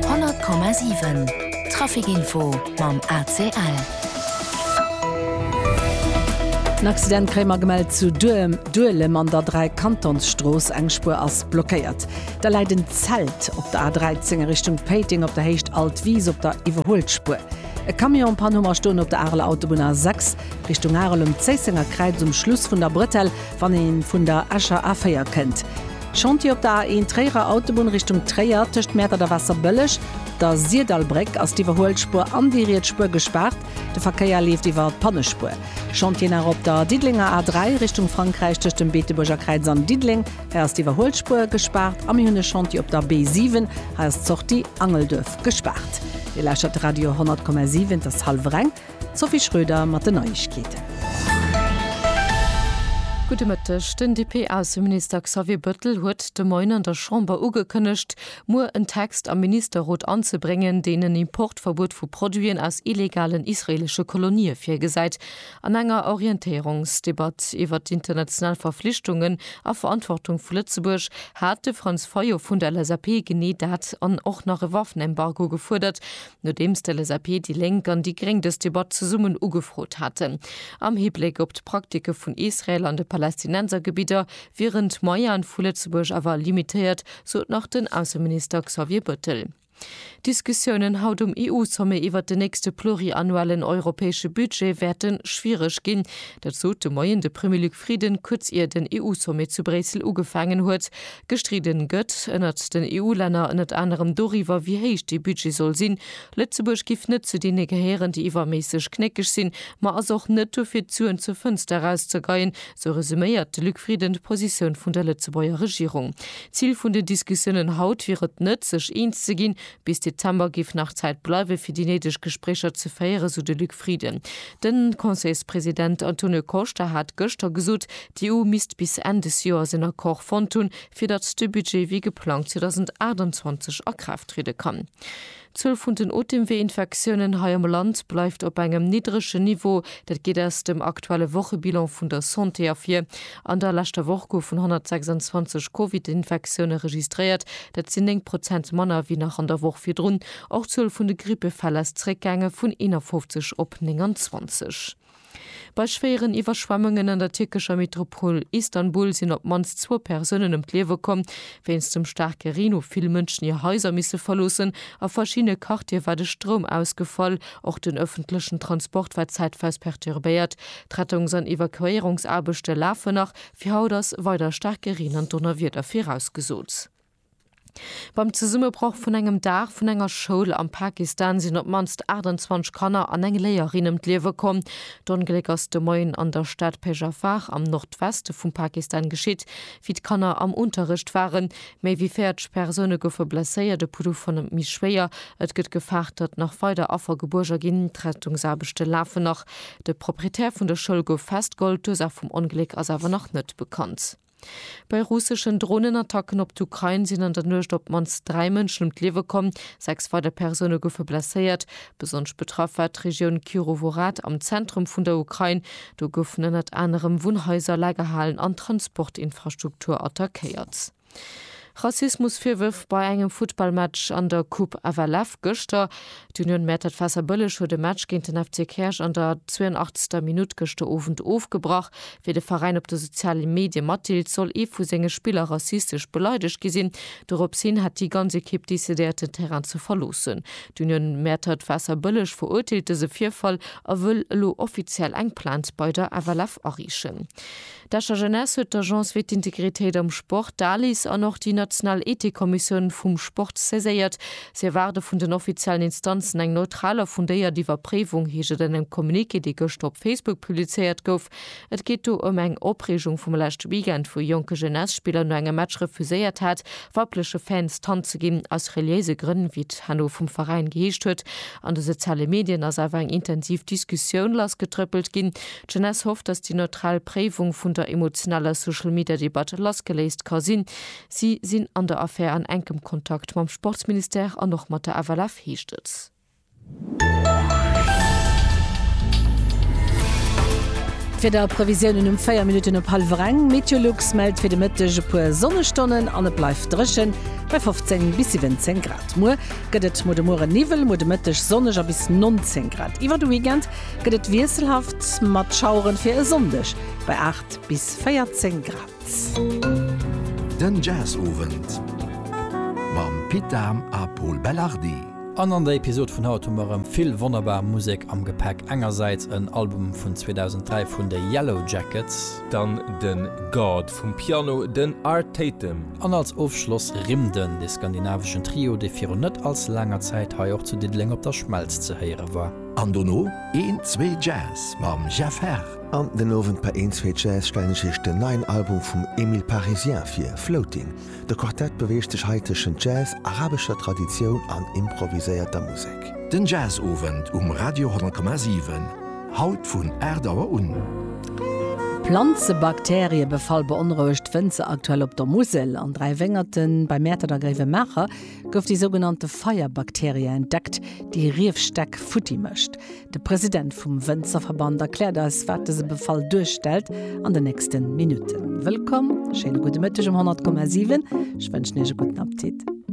100,7 Trafic-Info mam ACL. En Accident kréie mer gemellt zu Duelem an der Dräikantonsstrooss. Eng Spuer ass blockéiert. Da läit en Zelt op der A13 a Richtung Péiteng op der Héicht Alt Wiis op der Iwwerhuelspuer. E Camion en Panne huMer stoen op der Areler Autobunn A6 Richtung Arel um Zéissenger Kräiz um Schluss vun der Bretelle, wann ee vun der Escher A4 kënnt. Chantier op der A1 Tréierer Autobunn Richtung Tréier, tëscht Mäertert a Waasserbëlleg, der Sirdallbréck, ass d'Iwwerhuelspuer an déi riets Spuer gespaart. De Verkéier leeft iwwer d'Pannespuer. Chantier nach op der Diddelenger A3 Richtung Frankräich, tëscht dem Beetebuerger Kräiz an Diddeleng. Hei ass d'Iwwerhuelspuer gespaart. A mir hunn e Chantier op der B7. Hei ass d'Sortie Angelduerf gespaart. Dir lauschtert Radio 100,7, et ass hallwer eng. D'Sophie Schröder mat den Neiegkeeten. Gudde Mëtteg. Den DP-Ausseminister Xavier Bëttel huet de Moien an der Chamber ugekënnegt, muer en Text am Ministerrot anzebréngen, deen en Importverbuet vu Produiten aus illegalen israeelesche Kolonië virgesäit. An enger Orientéierungsdebatt iwwert d'international Verflichtungen a Verantwortung vu Lëtzebuerg hat de Franz Fayot vun der LSAP genee dat an och nach e Waffenembargo gefuerdert, Nodeems d'LSAP, déi Lénk an déi Gréng dës Debatt zesummen ugefrot haten, am Hibléck op d'Praktike vun Israel an de Palästinensergebidder, wieren d'Moyenë vu Lëtzebuerg awer limitéiert, sot nach den Ausseminister Xavier Bëttel. D'Diskussiounen haut um EU-Sommet iwwert den nächste pluriannuellen europäesche Budget wäerte schwiereg ginn. Dat sot de Moien de Premier Luc Frieden, kuerz ier den EU-Sommet zu Bréissel ugefaangen huet. Gestridden gëtt ënnert den EU-Länner ënnert anerem doriwwer, wéi héich dee Budget soll sinn. Lëtzebuerg giff net zu deene gehéieren, déi iwwerméisseg knéckeg sinn, ma ass och net dofir, d'Suen zur Fënster erauszegeien, sou resuméiert de Luc Frieden d'Positioun vun der Lëtzebuerger Regierung. D'Zil vun den Diskussiounen haut wier et net, sech eens ze ginn, Bis Dezember géif nach Zäit bleiwe fir déi néideg Gespréicher ze féieren, sou de Luc Frieden. De Conseilspresident Antonio Costa hat gëschter gesot, d'EU misst bis Enn des Joers en Accord fonnt hunn, fir datt de Budget wéi geplangt 2028 a Kraaft triede kann. D'Zuel vun den Otemwee-Infektiounen hei am Land bleift op engem niddregen Niveau. Dat geet aus dem aktuelle Wochebilan vun der Santé ervir. An der leschter Woch goufen 126 Covid-Infektioune registréiert, dat sinn 9 Prozent manner wéi nach an der Woch virdrun. Och d'Zuel vun de Grippefäll ass zeréckgaange vun 51 op 29. Bei schwéieren Iwwerschwemmungen an der tierkescher Metropol Istanbul sinn op d'mannst zwou Persounen ëm d'Liewe komm. Wéinst dem staarke Reen hu vill Mënschen hir Haiser misse verloossen. A verschiddene Quartiere war de Stroum ausgefall. Och den ëffentlechen Transport war zäitweis perturbéiert. D'Rettungs an Evakuéierungsaarbechte lafen nach, fir haut ass weider staarke Reen an Donnerwieder virausgesot. Beim Zesummebroch vun engem Daach vun enger Schoul am Pakistan sinn op d'mannst 28 Kanner an eng Léierin ëm d'Liewe komm. D'Ongléck ass de Moien an der Stad Peshawar am Nordweste vum Pakistan geschitt, wéi d'Kanner am Unterrecht waren. Méi wéi 40 Persoune goufe blesséiert, e Puddu vun méi schwéier. Et gëtt gefaart, datt nach weider Affer gebuerger ginn. D'Rettungsaarbechte lafen nach. De Proprietär vun der Schoul gouf festgeholl, d'Ursaach vum Ongléck ass awer nach net bekannt. Bei russeschen Dronenattacken op d'Ukrain sinn an der Nuecht op d'mannst dräi Mënschen ëm d'Liewe komm, sechs weider Persoune goufe blesséiert. Besonnesch betraff war d'Regioun Kirovohrad am Zentrum vun der Ukrain. Do goufen ënnert anerem Wunnhaiser, Lagerhalen an Transportinfrastruktur attackéiert. Rassismusvirwërf bei engem Futtballmatch an der Coupe FLF gëschter. D'Union Mäertert Waasserbëlleg huet e Match géint den FC Käerch an der 82. Minutt gëschter Owend ofgebrach. Wéi de Veräin op de soziale Medie matdeelt, soll ee vu senge Spiller rassistesch beleidegt gi sinn. Dorops hin hätt déi ganz Ekipp decidéiert, den Terrain ze verloossen. D'Union Mäertert Waasserbëlleg verurteelt dëse Virfall a wëll elo offiziell eng Plainte bei der FLF ariichen. D'Escher Jeunesse huet d'Agence fir d'Integritéit am Sport, d'ALIS, an och déi national Ethikkommissioun vum Sport saiséiert. Si erwaarde vun den offiziellen Instanzen eng neutral a fundéiert Iwwerpréiwung, heescht et an engem Communiqué, dee gëschter op Facebook publizéiert gouf. Et geet do ëm eng Opreegung vum leschte Weekend, wou e jonke Jeunesse-Spiller no engem Match refuséiert hat, weibleche Fans d'Hand ze ginn, aus reliéise Grënn, wéi et herno vum Veräin geheescht huet. An de soziale Medien ass awer eng intensiv Diskussioun lassgetrëppelt ginn. D'Jeunesse hofft, datt déi neutral Préiwung vun der emotionaler Social-Media-Debatt lassgeléist ka sinn. Si sinn an der Affär an enkem Kontakt mam Sportsministère an och mat der FLF, heescht et. D'Wiederprevisiounen um 4 Minutten op hallwer eng, Meteolux mellt fir de Mëtteg e puer Sonnestonnen an et bleift dréchen, bei 15 bis 17 Grad. Muer gëtt et muer de Muere Niwwel, muer de Mëtteg sonneg a bis 19 Grad. Iwwer de Weekend gëtt et wiesselhaft mat Schaueren fir e Sonndeg bei 8 bis 14 Grad. Den Jazzowend mam Pit Dahm a Pol Belardi. An an der Episod vun haut hu mer erëm vill wonnerbar Musek am Gepäck. Engersäits en Album vun 2003 vun de Yellowjackets. Dann de God vum Piano, den Art Tatum. An als Ofschloss Rimden, de skandinaveschen Trio, dee virun net allze laanger Zäit hei och zu Diddeleng op der Schmelz ze héiere war. An dono een zwee Jazz mam Jeff Herr. An den Owend bei een zwee Jazz stellen ech iech den neien Album vum Emile Parisien vir, Floating. De Quartett beweegt sech hei tëschent Jazz, arabescher Traditioun an improviséierter Musek. Den Jazzowend um Radio 10,7, haut vun 8 Auer un. Planzebakterie befall beonrouegt Wënzer aktuell op der Musel, an Dräiwéngerten, bei Mäertert a Gréiwemaacher. gouf déi sougenannte Feierbakterie entdeckt, déi Riefstäck futti mécht. De President vum Wënzerverband erkläert eis, wat dëse Befall duerstellt an den nächste Minutten. Wëllkomm, schéine gudde Mëtteg um 100,7. Ech wënschen Iech e gudden Appetit.